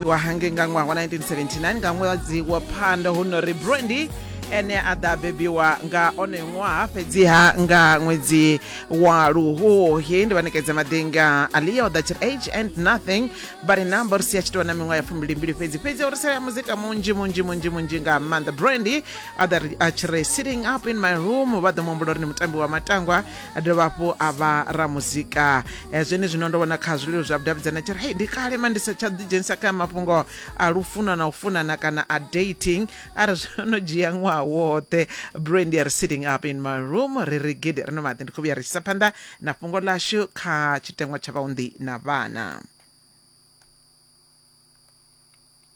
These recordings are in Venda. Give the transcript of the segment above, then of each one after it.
wa hangei nga ṅwaha wa 1979 nga ṅwedzi wa phando hu no ri brandy ene a ḓa bebiwa nga onoyo ṅwaha fhedziha nga ṅwedzi wa luhuhi ndi vhanekedza madinga aliya o ḓa tshiri age and nothing but number ri si a tshi tovha na miṅwaha ya fumbilimbili fhedzi fhedzi o ri sela muzika munzhi munzhi munzhi munzhi nga maanḓa brandy a ḓa ri- a tshi ri sitting up in my room vha ḓo muhumbula uri ndi mutambi wa matangwa a dovha hafhu a vha ramuzika eh, zwene zwino ndo vhona kha zwililo zwa vhudavhidzana tshi ri hei ndi kale ma ndi sa tsha ḓidzhenisa kha mafhungo a lufuno na u funana kana a dating a ri zwo no dzhia ṅwaha woṱhe brandy are sitting up in my room ri ri gidi ri no maḓi ndi khou vhuya ri tshisa phanḓa na fhungo ḽashu kha tshiteṅwa tsha vhaunḓi na vhana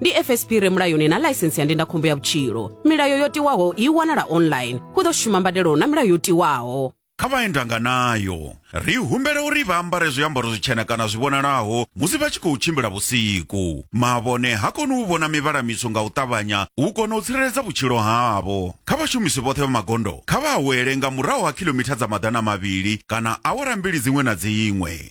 ndi fsp re mulayoni na ḽaisensi ya ndindakhombo ya vhutshilo milayo yo tiwaho i wanala online hu ḓo shuma mbadelo na milayo yo tiwaho kha vha endanga nayo. Ri humbela uri vha ambare zwiambaro zwitshena kana zwi vhonalaho musi vha tshi khou tshimbila vhusiku. Mavhone ha koni u vhona mivhala mitswu nga u ṱavhanya u kona u tsireledza vhutshilo havho. Kha vhashumisi vhoṱhe vha magondo kha vha awele nga murahu ha khilomitha dza maḓana mavhili kana awara mbili dziṅwe na dziṅwe.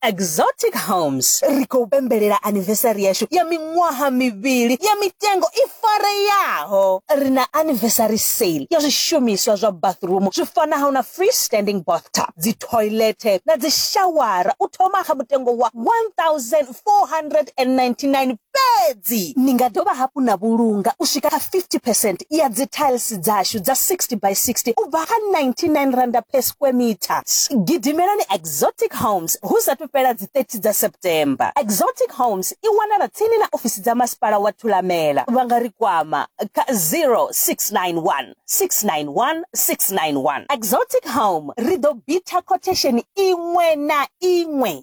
Exotic Homes ri khou pembelela anniversary yashu ya miṅwaha mivhili ya mitengo i fareyaho. Ri na anniversary sale ya zwishumiswa zwa bathroom zwi fanaho na free standing bathtub, dzi toilet na dzi shawara u thoma kha mutengo wa 1499 Fhedzi ni nga dovha hafhu na vhulunga u swika kha 50 percent ya dzithailisi dzashu dza 60 by 60 u bva kha R99 per square metre. Gidimelani Exotic Homes hu sathu fhela dzi 30 dza September. Exotic Homes i wanala tsini na ofisi dza Masipala wa Thulamela. Vha nga ri kwama kha 0691 691 691. Exotic Home, ri ḓo bitha khothesheni iṅwe na iṅwe.